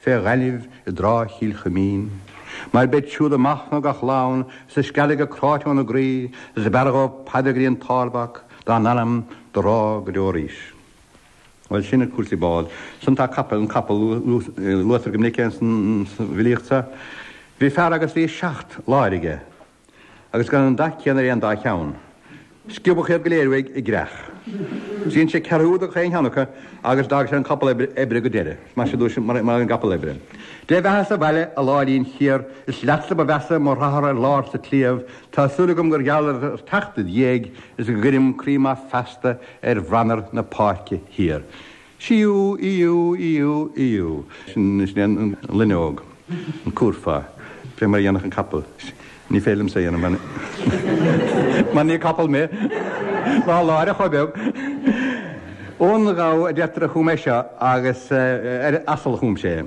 fé ghainimh i dtráigh Chill Chuimín, mar beid siúd ag machnamh gach lá, is ag scalladh go cráite óna gcroí, is b'fhearra dhóibh paidrín páirteach, dá n-anam do rá go deo arís. Bhuel, sin iad cúrsaí bád. Ansan tá capaill, an capall, luaitear go minic é san bhfilíocht so. Bhí fear agus bhí seacht láir aige. agus gan an dath céanna ar aon dá cheann. Sciobadh iad go léir uaidh i gcreach. Dhein sé ceathrú do gach aon cheann acu agus d'fhág sé an capall oibre go deireadh. Is maith sin duit mar an gcapall oibre. Dé bheatha sa bhaile, a láirín chiar, is leatsa ba mheasa mo hata ar lár sa tsliabh, tá súil agam gur gheall ar theacht id dhiaidh is go gcuirim croí maith feasta ar bhranar na páirce thiar. Síú, íú, íú, íú. Sin is déan an loinneog, an cúrfá, fé mar a dhéanfadh an capall. Ní féidir liomsa a dhéanamh mar mar ní capall mé. Ná láir ach chomh beag. Eoghan Gabha a deirtear a chum é seo agus ar asal a chum sé.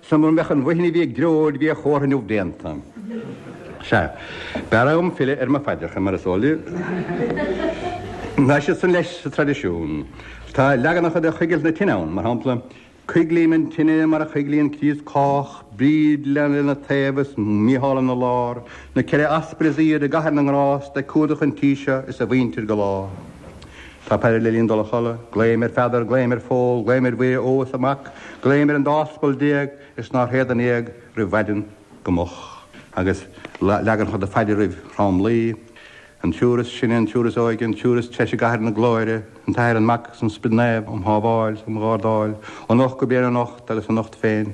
Sea, mura mbeadh an bhuidhin a bhí ag dreoil, bhí a chomhartha inniu déanta. Sea, b'fhearr dhom filleadh ar mo phaidreacha, mar is eol díbh. Tá siad san leis sa traidisiún. Tá leaganacha de choigilt na tine ann, mar shampla, Coiglím an tine mar a choiglíonn Críost cách, Bríd lena taobh is Mícheál ina lár, na ceithre Aspail is aoirde i gcathair na ngrást ag cumhdach an tí seo is a mhuintir go lá. Tá paidir le linn dul a chodladh. Glaoim ar Pheadar, glaoim ar Phól, glaoim ar Mhuire Ógh is a mac, glaoim ar an dá aspal déag is nár théad in éag roimh mhaidin go moch, agus leagan ann de phaidir roimh thromluí, an triúr is sine, an triúr is óige, an triúr is treise i gcathair na glóire, an tAthair, an Mac, is an Sprid Naomh, am shábháil, am ghardáil, ó anocht go bliain anocht agus anocht féin.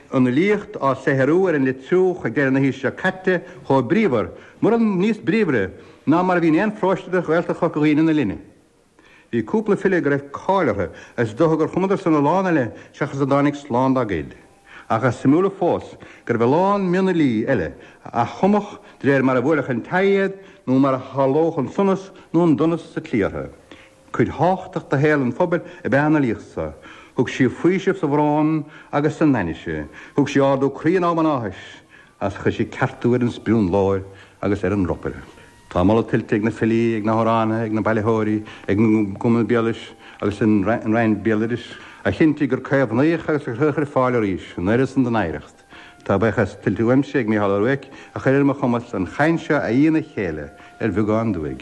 an fhilíocht á saothrú ar an Leitriúch go deireadh na haoise seo caite chomh bríomhar, mura níos bríomhaire, ná mar a bhí in aon pharóiste de Ghaeltacht Chorca Dhuibhne na linne. Bhí cúpla file go raibh cáil orthu agus is dócha gur chumadarsan a lán eile seachas a dtáinig slán dá gcuid, ach is suimiúla fós go raibh a lán mionfhilí eile a chumfadh de réir mar a bhuailfeadh an taghd iad nó mar a tharlódh an sonas nó an donas sa tslí orthu. Cuid thábhachtach de shaol an phobail ab ea an fhilíocht so. Thug sí faoiseamh sa bhrón agus san ainnise. Thug sí ardú croí in am an áthais agus chuir sí ceartú ar an sprionlóir agus ar an ropaire. Tá moladh tuillte ag na filí, ag na hamhránaithe, ag na bailitheoirí, ag an gCumann Béaloidis agus an Roinn Béaloidis a chinntigh gur caomhnaíodh agus gur cuireadh ar fáil arís an oiread san den oidhreacht. Tá buíochas tuillte uaimse ag Mícheál Ó Ruairc a chuir ar mo chumas an chaint seo a fhí ina chéile ar bheagán duaidh.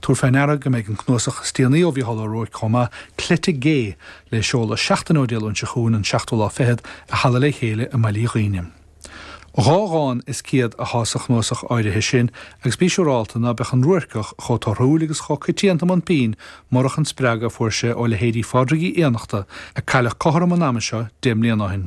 Tabhair fé ndeara go mbeidh an cnuasach is déanaí ó Mhícheál Ó Ruairc chomh maith, Cleite Gé, le seoladh seachtain ó Dé Luain seo chugainn, an seachtú lá fichead, i Halla Le Chéile i mBaile Uí Dhuíne. Dhá dhán is ciad athá sa chnuasach áirithe sin agus bí siúrálta ná beadh an Ruairceach chomh torthúil agus chomh coitianta i mbun pinn murach an spreagadh a fuair sé ó leithéidí Phádraig Uí Fhiannachta, a cailleadh cothrom an ama seo deich mbliain ó shin.